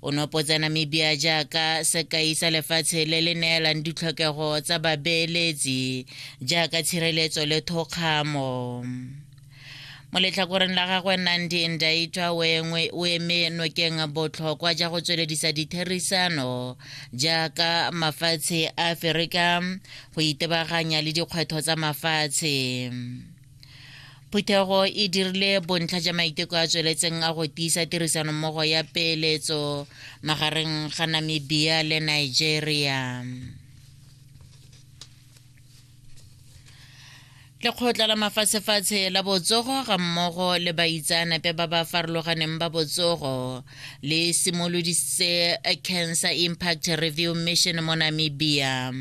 O nopotsa Namibia jaaka sekai sa lefatshe le le neelang ditlhokego tsa babeeletsi jaaka tshireletso le thokgamo. Mo letlhakoreng la gagwe Nandi Ndaitwa o eme nokeng botlhokwa ja go tsweledisa ditherisano jaaka mafatshe a Aferika go itebaganya le dikgwetho tsa mafatshe. phuthego e dirile bontlha ja maiteko a tsweletseng a go tiisa tirisanommogo ya peeletso magareng ga namibia le nigeria lekgotla la mafatshefatshe la botsogo ga mmogo le baitsaanape ba ba farologaneng ba botsogo le simolodisitse cancer impact review mission mo namibia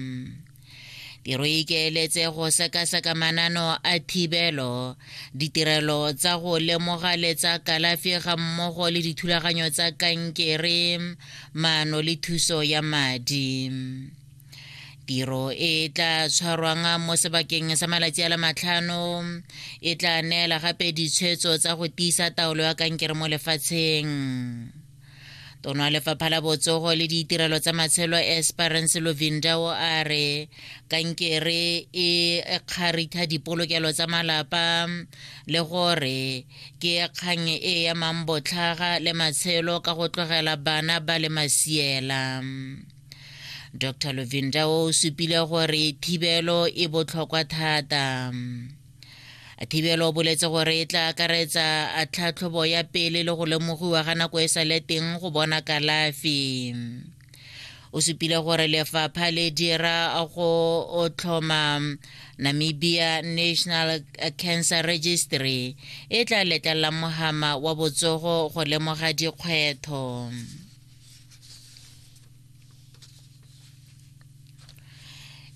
Tiro e ikaeletse go sekaseka manano a thibelo, ditirelo tsa go lemoga le tsa kalafi ga mmogo le dithulaganyo tsa kankere, maano le thuso ya madi. tiro e tla tshwarwang mo sebakeng sa malatsi a le matlhano e tla neela gape ditshwetso tsa go tiisa taolo ya kankere mo lefatsheng tono ya lefapha la botsogo le ditirelo tsa matshelo esperance lovinda o a re kankere e kgaritha dipolokelo tsa malapa le gore ke kgang e emang botlhaga le matshelo ka go tlogela bana ba le masiela dr lovinda o supile gore thibelo e botlhokwa thata Thibelo o boletse gore e tla akaretsa tlhatlhobo ya pele le go lemogiwa ga nako e sa le teng go bona kalafi o supile gore lefapha le dira go tlhoma namibia national cancer registry e tla letlelelang mohama wa botsogo go lemoga dikgwetho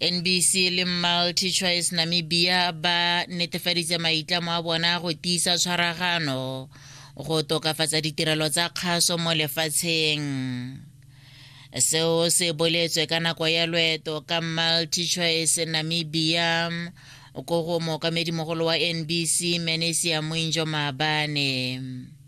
nbc le multi choice namibia ba netefaditse maitlamo a bona go tiisa tshwaragano go tokafatsa ditirelo tsa kgaso mo lefatsheng seo se boletswe ka nako ya loeto ka multi choice namibia ko go mookamedimogolo wa nbc manesia moinjo maabane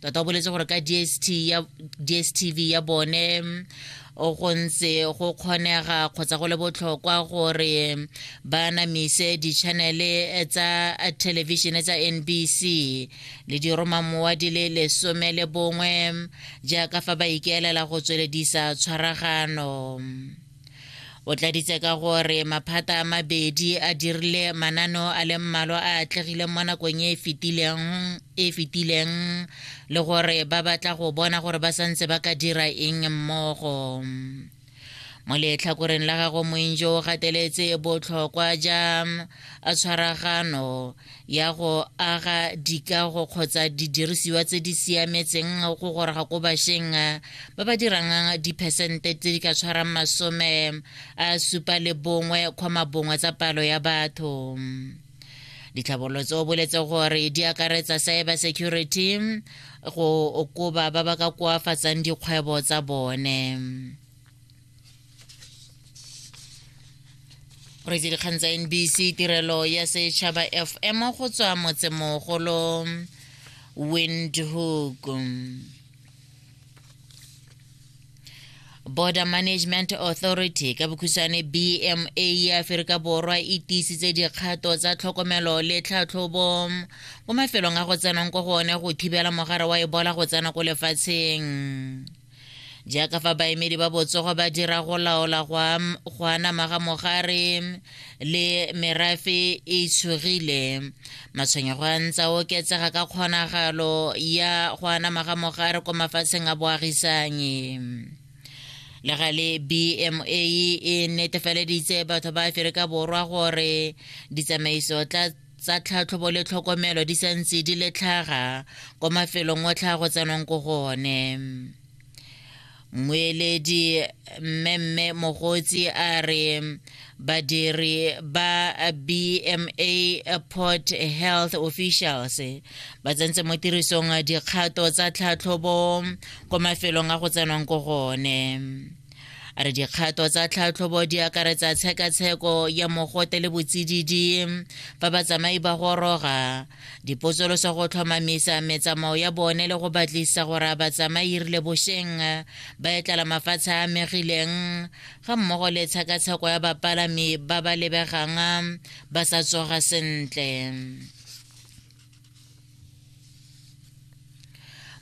tota o boletse gore ka dst ya dstv ya bone o go ntse go kgonega kgotsa go le botlhokwa gore ba namise ditšhanele tsa thelebišene tsa nbc le diromamowa di le lesome le bongwe jaaka fa ba ikaelela go tsweledisa tshwaragano O tladitse ka gore maphata a mabedi a dirile manano a le mmalwa a atlegileng mo nakong e e fetileng e le gore ba batla go bona gore ba santse ba ka dira eng mmogo mo letlhakoreng la gago moinjo o gateletse botlhokwa ja tshwaragano ya go aga dikago kgotsa didirisiwa tse di siametseng go goroga ko bašeng ba ba dirang diphesente tse di ka tshwarang masome a supa le bongwe kgoma bongwe tsa palo ya batho ditlhabololo tse o boletse gore di akaretsa cyber security go okoba ba ba ka koafatsang dikgwebo tsa bone re itse dikgang tsa nbc tirelo ya setšhaba fm go tswa motsemogolo windhoek border management authority ka bokhutshwane bma ya aferika borwa e tiisitse dikgato tsa tlhokomelo le tlhatlhobo mo mafelong a go tsenang ko go one go thibela mogare wa ebola go tsena ko lefatsheng jaaka fa baemedi ba botsogo ba dira go laola go anama ga mogare le merafe e itshogile matshwenyego a ntsa oketsega ka kgonagalo ya go anama ga mogare ko mafatsheng a boagisanye le ga le bma e netefaleditse batho ba aferika borwa gore ditsamaiso tla tsa tlhatlhobo le tlhokomelo di sa ntse di le tlhaga kwa mafelong o tlhago tsenong ko go one mmueledi mmemme mogotsi a re badiri ba bma port health officials ba tsentse mo tirisong dikgato tsa tlhatlhobo kwa mafelong a go tsenwang ko gone a re dikgato tsa tlhatlhobo di akaretsa tshekatsheko ya mogote le botsididi fa batsamai ba goroga dipotsoloso go tlhomamisa metsamao ya bone le go batlisa gore a batsamai rile bosheng ba etlala mafatshe a amegileng ga mmogo le tshekatsheko ya bapalami ba ba lebegang ba sa tsoga sentle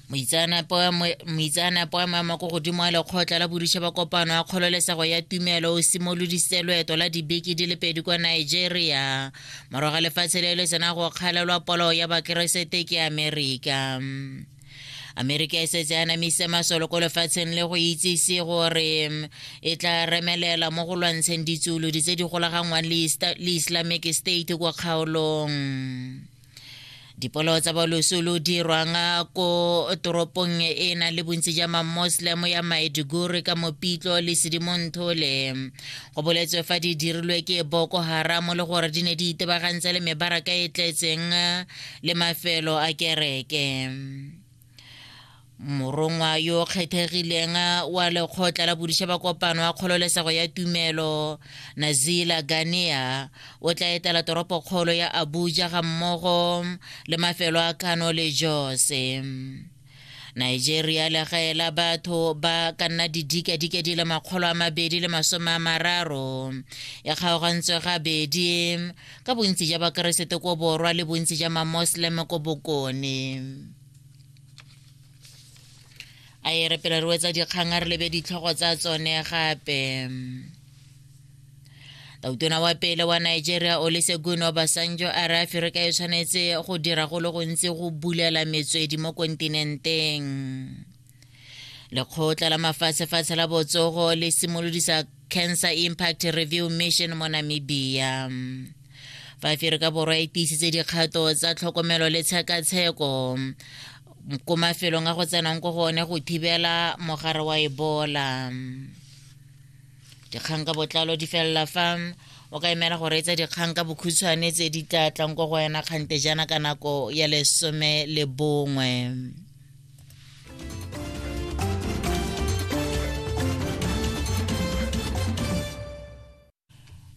moitseanape wa mo- moitseanape wa maemo a ko godimo a lekgotla la boditšha ba kopano ya kgololesego ya tumelo o simolodisitse loeto la dibeke di le pedi kwa nigeria morago ga lefatshe le le sena go kgalelwa polo ya bakeresete ke amerika amerika e setse a namise masolo ko lefatsheng le go itsise gore mm, e tla remelela mo go lwantsheng ditsolodi tse di golagangwang le islamic state kwa kgaolong dipolao tsa baloso lo dirwang ko toropong e na le bontsi ja mamoslem ya maiduguri ka mopitlo le sedimonthole go boletswe fa di dirilwe ke boko haramo le gore di ne di itebagantse le mebaraka e tletseng le mafelo a kereke morongwa yo o kgethegileng wa lekgotla la bodiša ba kopano wa kgololesego ya tumelo nazila ganea o tla etela toropokgolo ya abuja ga mmogo le mafelo a kano le jose nigeria legae la batho ba ka nna didikadika di le makgolo a mabedi le masome a mararo e kgaogantswe gabedi ka bontsi ja bakeresete ko borwa le bontsi ja mamoslem ko bokone a e re pele re wetsa dikgang a re lebe ditlhogo tsa tsone gape tautona wa pele wa nigeria olesegun obasanjo a re aferika e tshwanetse go dira go le gontsi go bulela metswedi mo kontinenteng lekgotla la mafatshefatshe la botsogo le simolodisa cancer impact review mission mo namibia fa aferika borwa e tiisitse dikgato tsa tlhokomelo le tshekatsheko ko mafelong a go tsenang ko go one go thibela mogare wa ebola dikgang ka botlalo di felela fa o ka emela go reetsa dikgang ka bokhutshwane tse di tla tlang ko go wena kgante jana ka nako ya lesome le bongwe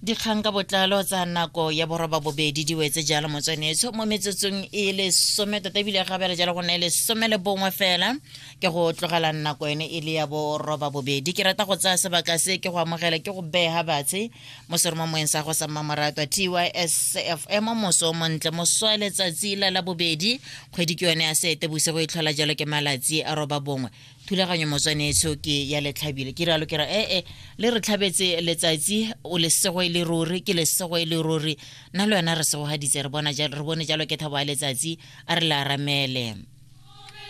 dikgang ka botlalo tsa nako ya boroba bobedi di wetse jalo motswanetsho mo metsotsong e lesome tota ebile gabela jalo go nna e lesome le bongwe fela ke go tlogela nako ene e le ya bo roba bobedi ke rata go tsaya sebaka se ke go amogela ke go bega batshe mo seromo moeng sa go sa mmamoratwa tysfm moso o montle mosoa letsatsi la la bobedi kgwedi ke yone ya seete bosigo e tlhola jalo ke malatsi a roba bongwe thulaganyo motswanetsho ke ya letlhabile ke rialo ke ra ee eh, le re tlhabetse letsatsi o lesego e le ruri ke lesego e le ruri nna le wena re segogaditse re bone jalo ke thabo ya letsatsi a re le aramele